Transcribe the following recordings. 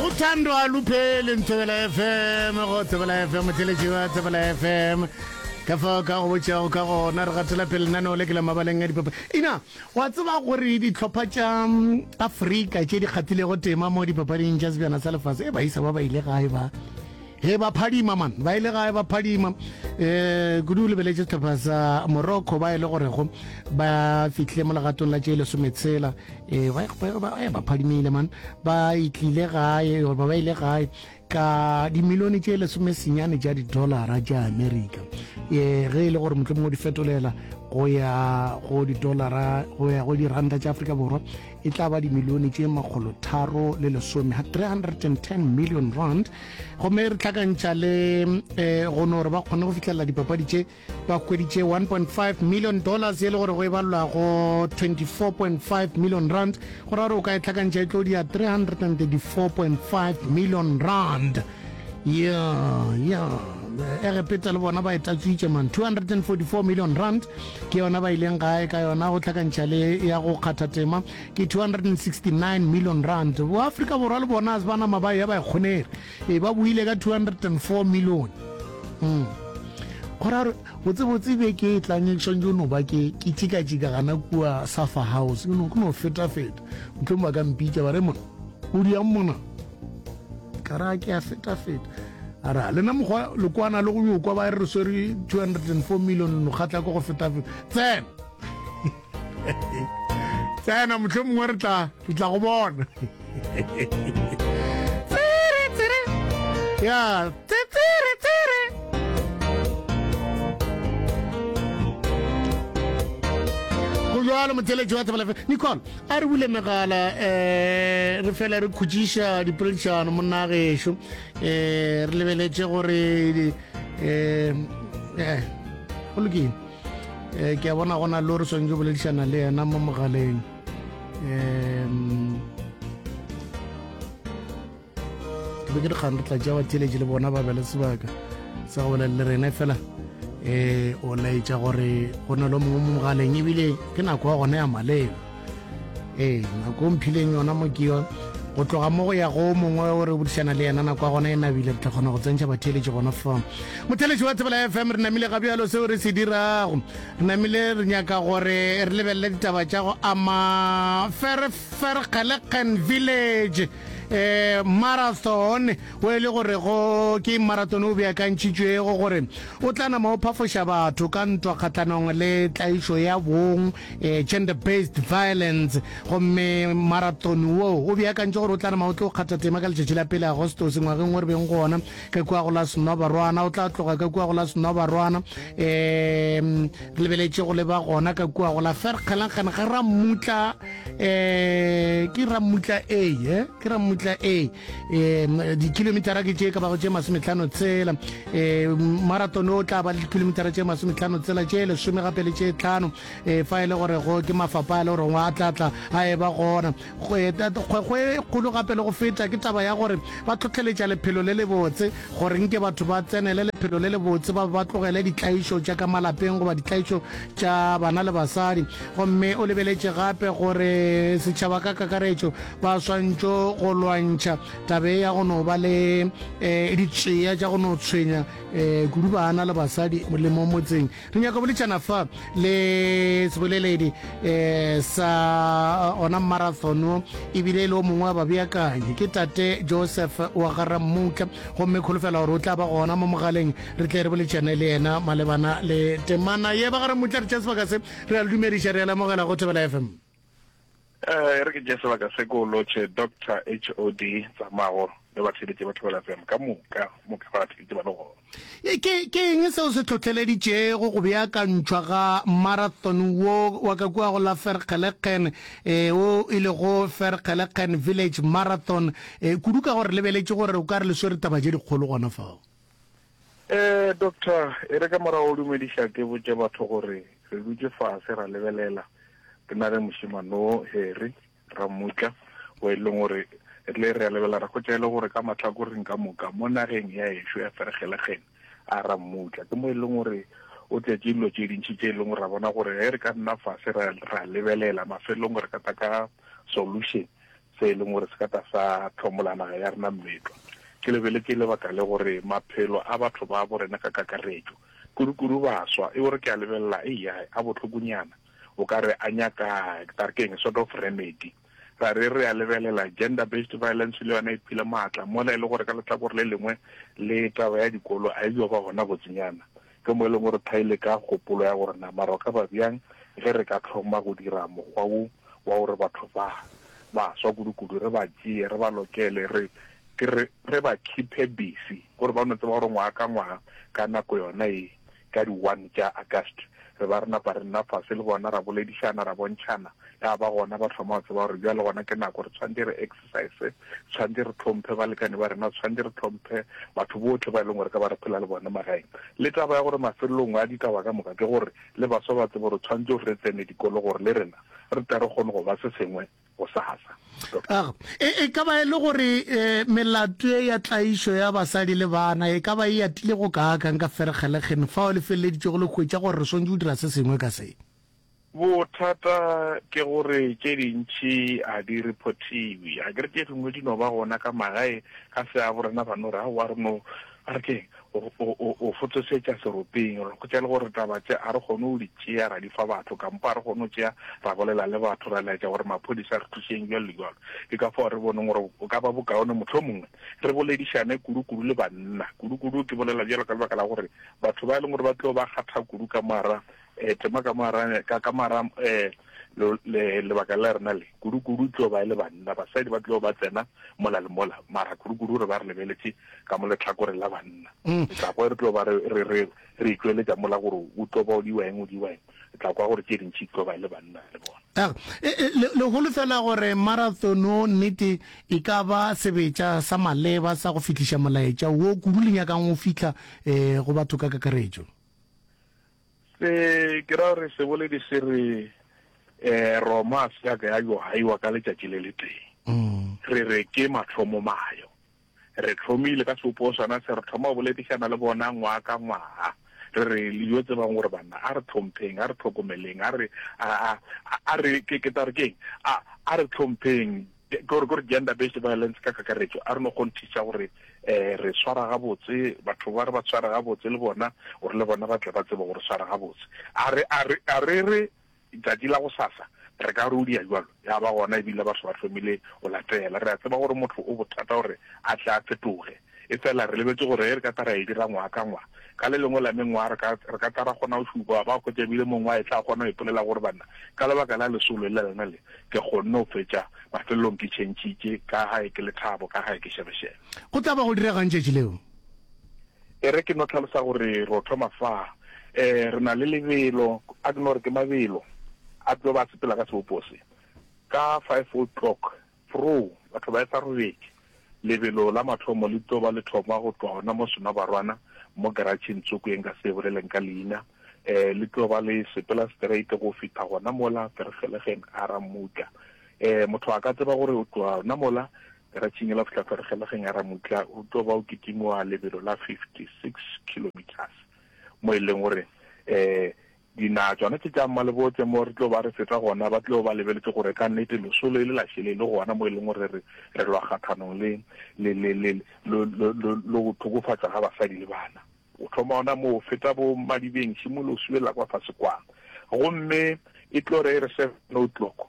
uthando alupheli mthebela fm go tsebela fm theletši ba tsebela fm ka fa ka go botšago ka gona re gatela pele nano le ke la mabaleng a dipapa ina wa tseba gore ditlhopha tša mm, afrika tše di kgathilego tema mo dipapading tša sebjana sa lefase e baisa ba ba ile gae ba Hee ba phadima man, ba ile gae ba phadima. E, kudu o lebeletše sehlopha sa Morocco ba e le gorego ba fihle mo legatong la tše lesometshela. E, ba, ba, ba, e, ba phadimile man, ba itlile gae, ba ba ile gae ka dimilione tše lesomesenyane tša didolara tša Amerika. E, ge e le gore mohlomongwe di fetolela go ya go didolara, go ya go diranta tša Afrika Borwa, e tla ba dimilione tše makgolotharo le lesome ha 310 million rand gomme re hlakantšha le um eh, gono gore ba kgone go fitlhelela dipapadi tše ba kgweditše 1.5 million dollars e le gore go e balelwa go 24.5 million rand go ra gore o ka e tlhakantšha e tlo dia 334.5 million rand Yeah, yeah. egepeta le bona ba e tlatswitše man 244 million rand ke yona ba ileng gae ka yona go tlhakantšha le ya go kgatha tema ke 269 million rand boafrika borwa le bona se ba nama ba ya ba kgonere e ba buile ka 204 million mm. gorare botsebotse be ke e tlang e tshwanetse o no ba ke ke tšikatšika gana kua safa house ke no fetafeta motlhong ba ka mpitša ba re mona o diang mona ka ra ke a feta-feta a re a lena mokgwa lekwana le go yo kwa ba re swere 204 million no kgatla ko go feta-feta tsena tsena motlho mongwe re tla re tla go bona tsere tsere ya tsere tsere go jwalo motheletši wa thebalefe nicole A re bule megala um re fele re khutšiša dipoledišano monna gešo um re lebeletše gore um go lokile um ke a bona gona le o re swanetše go boledišana le yena mo mogaleng um ke be ke dikgang re tla tšea batheeletši le bona ba be le sebaka sa go bolela le rena fela um o laetša gore go na le mongwe mo mogaleng ebile ke nako ya gone ya maleba ee nako o mphileng yona mo ke yone go tloga mo go ya go mongwe o re bodišana le yena nako ya gona e nabile re tla kgona go tsentšha batheeletši gona fam motheeletši wa tsebela f m re namile ga bjalo seo re se dirago re namile re nyaka gore re lebelele ditaba tša go ama ferfergeleken village um marathon o e le gore go ke marathon o beakantšhitšwego gore o tla nama o phafoša batho ka ntwa kgatlanong le tlaišo ya bong um gender based violence gomme marathon wo o beakantšhe gore o tla nama o tlo kgatha tema ka letšatši la pele agostose ngwageng o re beng go ona ka kua go la senobarwana o tla tloga ka kua go la senobarwana um Ke lebeletše go leba gona ka kua go la ferkgelangkgane ga rammutla um ke rammutla a e ke rammutla a um dikilomitara ke tše ka bago tše masometlhano tsela um marathon o tla ba le dikilomitara tše masometlhano tsela tše lesome gape le tše tlhano um fa e le gore go ke mafapa a le goreng a tlatla a e ba gona Kgweta, kgwekgwe e kgolo gape le go feta ke taba ya gore ba tlhohleletša lephelo le lebotse. Gore nke batho ba tsenele lephelo le lebotse ba be ba tlogele ditlaišo tša ka malapeng goba ditlaišo tša bana le basadi. Gomme o lebeletše gape gore setšhaba ka kakaretšo ba swantšo go lwantšha taba ye ya go no ba le um ditšea tša go no tshwenya um kudu bana le basadi le mo motseng. Re nyaka boletsana fa le seboleledi eh, sa eh, ona marathon wo ebile e le o mongwe wa babeakanyi ke tate joseph wa garammutla gomme kholofela gore o tla ba gona mo mogaleng re tle re boletsane le yena malebana le temana ye ba garammutla re tšea sebaka se re a le dumediša re a lemogela go thebela fm Eh, e re ke tše sebaka se ko lotšhe doctor hod tsamago le ba theletše batho bela fm ka moka moka ba theletše ba le gona E, ke ke eng seo se tlhotlheleditšego go beakantšhwa ga marathon wo wa ka kua go la ferkgelekgen eh, o e lego ferkgelekgen village marathon eh, kudu ka gore lebeletše gore o ka re le swere taba tše dikgolo gona fao Ee, doctor, e re ka morago o dumediša ke botše batho gore re dutše fase ra lebelela re na le mošemano Harry ra mmutla o e leng gore rile re a lebela ra kgotša e le gore ka mahlakoreng ka moka mo nageng ya ešo ya feregelegen a ra mmutla ke mo e leng gore o tletše dilo tše dintšhi tše e leng gore ra bona gore ge re ka nna fase ra lebelela mafelong re ka ta ka solution se e leng gore se ka tla sa hlomola naga ya rena mmetwa. Ke lebele ke lebaka le gore maphelo a batho ba bo rena ka kakaretšo, kudu-kudu baswa, e gore ke a lebelela, eya, a bohlokonyana. O ka re a nyaka, ke tla re ke eng, sort of remedy. Ra re re a lebelela gender based violence le yona e phile maatla mola e le gore ka lehlakore le lengwe le taba ya dikolo a e yo ba gona botsinyana. Ke mo e lego gore tha e le ka kgopolo ya gore na mara o ka ba bjang ge re ka hloma go dira mokgwa wo wa gore batho ba ba swa kudukudu re ba tšee, re ba lokele, re ke re, re ba khiphe busy gore ba no tseba gore ngwaga ka ngwaga ka nako yona ye, ka di one tša August, re ba re napa re nna fase le bona ra boledišana, ra bontšhana, ya ba gona ba thoma go tseba gore bjale gona ke nako re tshwantše re. saese tshwanetse re tlhomphe balekane ba rena tshwanetse re tlhomphe batho botlhe ba e leng gore ka ba re phela le bone magaeng le taba ya gore mafelelong a ditaba ka moka ke gore le baswa ba tsebo gore tshwanetse gore re tsene dikolo gore le rena re tla re kgone go ba se sengwe go sasa ah, e, e ka ba e le gore um melato e ya tlaišo ya basadi le bana e ka ba e atile go kaakang ka feregelegen fa o le feleleditse go le kgwetsa gore re swantse go dira se sengwe ka se Bothata ke gore tše dintši a di rephotiwe. A ke re tše dingwe di no ba gona ka magae ka se a borena ba no re, Aowa re no, a re keng, o, o, o, o fotsosetša seropeng. Re hwetša e le gore taba tše a re kgone go di tšea ra di fa batho kampo a re kgone go tšea ra bolela le batho ra laetša gore maphodisa a re thušeng bjalo le bjalo. Ke ka fao re boneng gore go ka ba bokaone mohlomongwe re boledišane kudu-kudu le banna. Kudu-kudu ke bolela bjalo ka lebaka la gore batho ba e leng gore ba tlo ba kgatha kudu ka moara Eh, tema ka moarane ka ka mara eh lo le lebaka la rena le kudu kudu tlo ba e le banna basadi ba tlo ba tsena mola le mola mara kudu kudu re ba re lebeletse ka mo letlhakore la banna mm. tla kwa re tlo ba re re re re tsweletsa mola gore o tlo ba o di weng o di weng tla kwa gore ke ding tshi tlo ba e le banna le bona ah, e, e, le go lefela gore marathon o nnete e ka ba sebetsa sa maleba sa go fitlisha molaetša wo kudu le nyakang o fitla eh go batho ka kakaretšo Se, ke ra gore seboledi se re, eh, Roma a se ya ka ya yo haiwa ka letšatši le le tee. Re re ke mathomomayo. Re tlhomile ka seopoo sona se, re thoma go boledišana le bona ngwaga ka ngwaga. Re re, le yo tsebang gore banna, a re tlhompheng, a re tlhokomeleng, a re, a, a, a, a re, ke, ke tla re ke'ng? A, a re tlhompheng. Ke gore, ke gore gender based violence ka kakaretšo a re no kgonthiša gore um re swara gabotse batho ba re ba sware gabotse le bona gore le bona ba tle ba tsebe go re swara gabotse. A re, a re, a re re tšatši la go sasa re ka rudia bjalo ya ba gona ebile batho ba hlomile go latela. Re a tseba gore motho o bothata gore a tle a fetoge. Efela re lebetše gore ge re ka tla ra e dira ngwaga ka ngwaga, ka le lengwe la mengwaga re ka, re ka tla ra kgona go šupa ba hwetša e bile mongwe a etla a kgona go ipolela gore, Banna, ka lebaka la lesolo la lena le, ke kgonne go fetša. Mafelelong ke tšhentšhitše, ka gae ke lethabo, ka gae ke šebešebe. Go tla ba go direga'ng tšatši leo? E re ke no hlalosa gore re yo thoma fa. E, re na le lebelo, a ke no re ke mabelo a tlo ba a sepela ka sebopo se. Ka five o'clock Pro, Batho ba esa robetše. Lebelo la mathomo le tlo ba le thoma go tloga gona mo Senobarwana mo garatšheng tsoko ye nka se e boleleng ka leina. Um, le tlo ba le sepela straight go fihla gona mola Vergeligen a ra Mutla. Um, motho a ka tseba gore o tloga gona mola garatšheng yela go fihla Vergeligen a ra Mutla o tlo ba o kitimoga lebelo la 56 kilometres mo e leng gore um, Dina tšona tše tša mmalebotle mo re tlo ba re feta gona ba tlo ba lebeletše gore ka nnete lesolo e le la šele e le gona mo e leng gore re re lwa kgathanong le le le le lo lo lo lo go thokofatšwa ga basadi le bana. O thoma ona moo, feta bo madibeng, šimolola o subelela kwa fase kwano. Gomme e tlo re e re seven o'clock,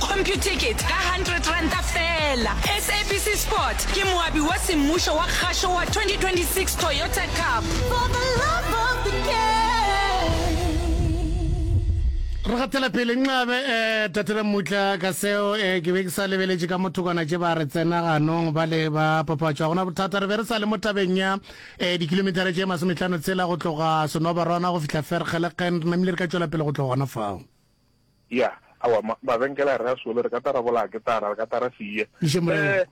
Computicket ka hundred ranta feela. SABC Sport ke moabi wa semmušo wa kgašo wa 2026 Toyota Cup. For the love of the game. Re gatela pele nxabe eh tatela mutla ka seo eh ke be ke sa lebeletše ka mothokwana tše ba re tsena ganong ba le ba papatšwa gona bothata re be re sa le mo tabeng ya eh dikilometara tše masometlhano tsela go tloga senobarwana go fihla ferkgelekgen re namile re ka tšwela pele go tloga gona fao Ya, aowa, ma, mabenkele a re a sole, re ka tla ra bolaya ketara, re ka tla ra se ye. Ije, Morena. Eh,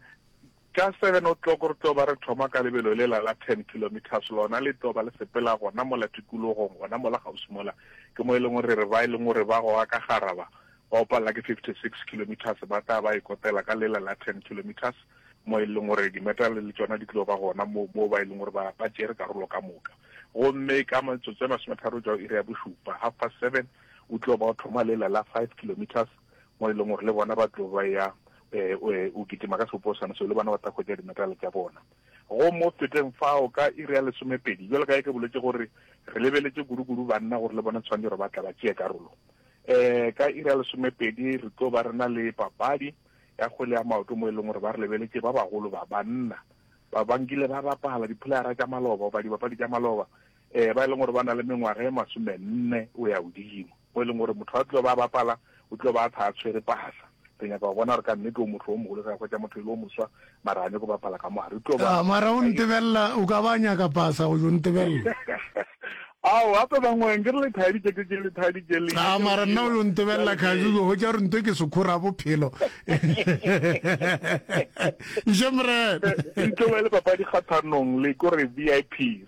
ka seven o'clock re tlo ba re thoma ka lebelo lela la ten kilometres, lona le tlo ba le sepela gona mola tikologong, gona mola kgauswi mola, ke mo e leng gore re re ba e leng gore ba goga ka gara ba, ba o palela ke fifty six kilometres, ba tla ba e kotela ka lela la ten kilometres, mo e leng gore dimeterale le tšona di tlo ba gona mo, mo ba e leng gore ba, ba tšere karolo ka moka. Gomme ka metsotso e masometharo go tšwa go iri ya bošupa, half past seven, O tlo ba o thoma lela la five kilometres mo e leng gore le bona ba tlo ba ya um o kitima ka seoposana seo le bona ba tla hwetša dimetale tša bona go mo feteng fao ka iri ya lesomepedi jalo ka e ke boletse gore re lebeletše kudu-kudu banna gore le bona tshwanetse gore ba tla ba tšee karolo um ka iri ya lesomepedi re tlo ba re na le papadi ya kgwele ya maoto mo e leng gore ba re lebeletše ba bagolo ba banna ba bankile ba bapala diphulara tša maloba goba dibapadi tša maloba um ba e leng gore ba na le mengwaga e masomenne o ya godimo, mo e leng gore motho a tlo ba bapala o tlo ba a tha a tshwere pasa re nyaka go bona gore ka nnete o motho o mogolo ge a hwetša motho e le o moswa mara a nyako bapala ka mogare o tlo ba ah, mara o ntebelela o ka ba nyaka pasa go jo ntebelela ao gape bangweng ke re lethadi tše tše lethadi tše le a ah, mara nna o yo ntebelela kgabi go hwetša gore nto ke sekhora bophelo iše mrene e tlo ba le papadi kgathanong le kore v i p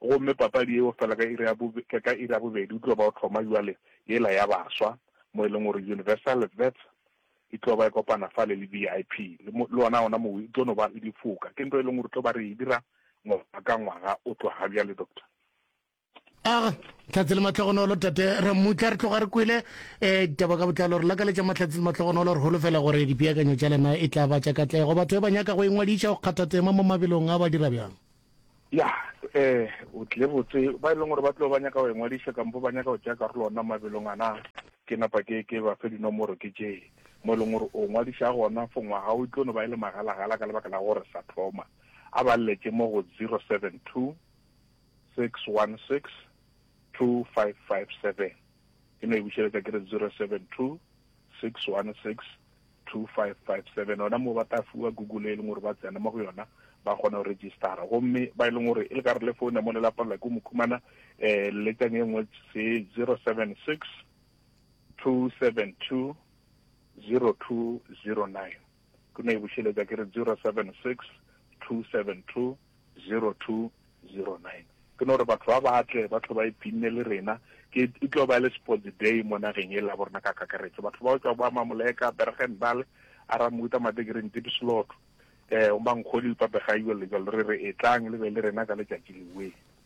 Gomme papadi yeo fela ka iri ya bo, ka iri ya bobedi o tlo ba o thoma bjale yela ya baswa, mo e leng gore Universal Vets e tlo ba e kopana fale le VIP, le, le wona ona mowe e tlo no ba le difoka. Ke nto e leng gore tlo ba re e dira ngwaga ka ngwaga o tloga bjale, Doctor. Ag, Tlhatse le Mahlogonolo, Tate Ramutla, re tloga re kwele um ditaba ka botlalo. Re lakaletša Mahlatse le Mahlogonolo, re holofela gore dipeakanyo tša lena e tla ba tša katlego. Batho ba ba nyaka go ingwadiša go kgatha tema mo mabelong a ba dira bjang? Ya, um o tlile botse, ba e leng gore ba tlo ba nyaka go engwadiša kampo ba nyaka go tšea karolo ona mabelong ana, ke napa ke ke ba fe dinomoro ke tše mo e leng gore o ngwadiša gona for ngwaga o tlo no ba e le magalagala ka lebaka la gore sa thoma. A ba lletše mo go 072 616 2557, ke no e bušeletša ke re 072 616 2557 gona moo ba tla fiwa google e leng gore ba tsena mo go yona ba kgona go registera gomme ba e leng gore e le ka re le founa mo le lapalelwa ke mokhumana um letšang e nngwe se 076 272 0209 ke no e bušeletsa ke re 076 272 0209. Ke no re batho ba ba tle, ba tlo ba iphinne le rena. Ke, e tlo ba e le sports day mo nageng e la bo rena ka kakaretšo. Batho ba go tšwa ba Mamoleka, Bergendaal, Aramuta, Madegereng, Diepsloot, eh, Omankgoli, Papegaio, le jalo. Re re etlang le be le rena ka letšatši lewe.